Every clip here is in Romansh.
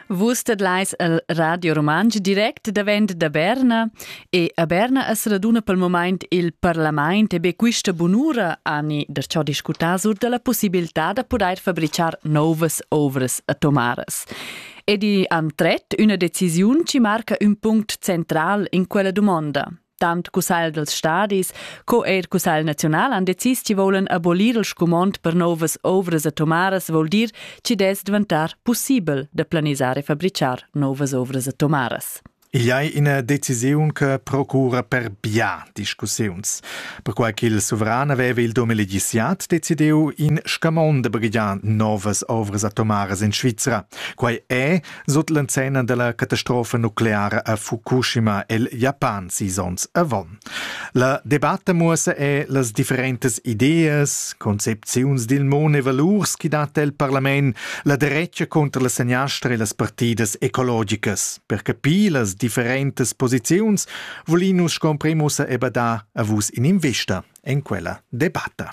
Vus tedlais al Radio Rumantsch direct davent da Berna e a Berna as raduna pel momaint il parlamaint e be quista bunura ani da ciò discutar sur da la possibilità da pudair fabrichar novas ovras atomaras. Ed i han tret üna decisiun chi marca ün punct central in quella dumonda. Tant cussagl dels stadis co eir cussagl naziunal han decis chi volen abolir il scumond per novas ovras atomaras vol dir chi dess diventar pussibel da planisar e fabrichar novas ovras atomaras. Igl ei ina decisiun che procura per bia discussiuns. Perquai ch'il suveran aveva il 2017 decidiu in scamond da baghegiar novas ovras atomaras en Svizra. Quai è, Sut l'enzenna della catastrofa nucleara a Fukushima el Japan sis ons avon. La debatta muossa è las differentes ideas, concepziuns dil mon e valurs chi dat el parlament la derecha contra la seniastra e las partidas ecologicas. Per capir las differentes posiziuns volinus scomprem ussa e badar a vus in invista en quella debatta.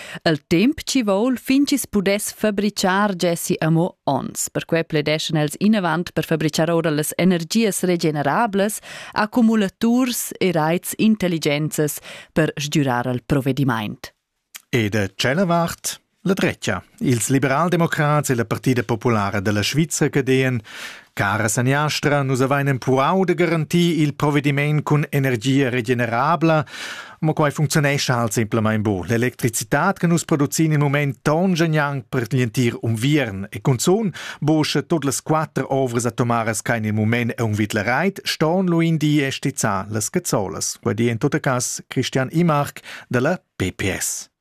El temp chi voul fin chi's pudess fabrichar gessi amo ons. Perque pledeschan els inavant per fabrichar oura las energias regenerablas, accumulaturs e raits intelligenzas per sgürar al provedimaint. E da tschella vart la drecha. Ils liberaldemocrats e la Partida populara della Svizzera che deien Cara saniastra, nus avain empurau da garantir il provvediment cun energia regenerabla, ma quai funcziunescha halt semplamain bo. L'electricitad che nus producin in moment tongia gnanc per l'entir unviern e cunzun bo sche tot las quatter ovras atomaras che in il moment è un vid la reit, ston lu in di e stizzar las cazzolas. Quai di en tot cas Christian Imark dalla PPS.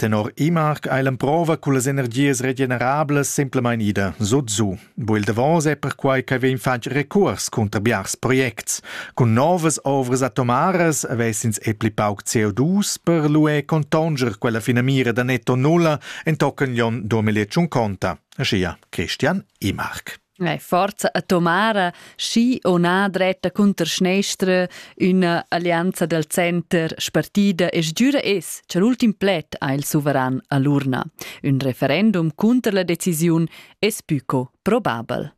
Tenor Immark ei l'emprova cullas energias regenerablas semplamain ida sut su. Bu il davos è perquai che vegn fatg recuors cunter biars projects. Cun novas ovras atomaras avessins e pli pauc CO2 per luer contonger quella finamira da netto nulla entochen l'onn 2050, aschia Christian Immark. Ei forza a Tomara schi o na dretta cunter schnestra üna alleanza del center spartida e sgiura es che l'ultim pled ha il suveran a l'urna. Un referendum cunter la decisiun es buco probabel.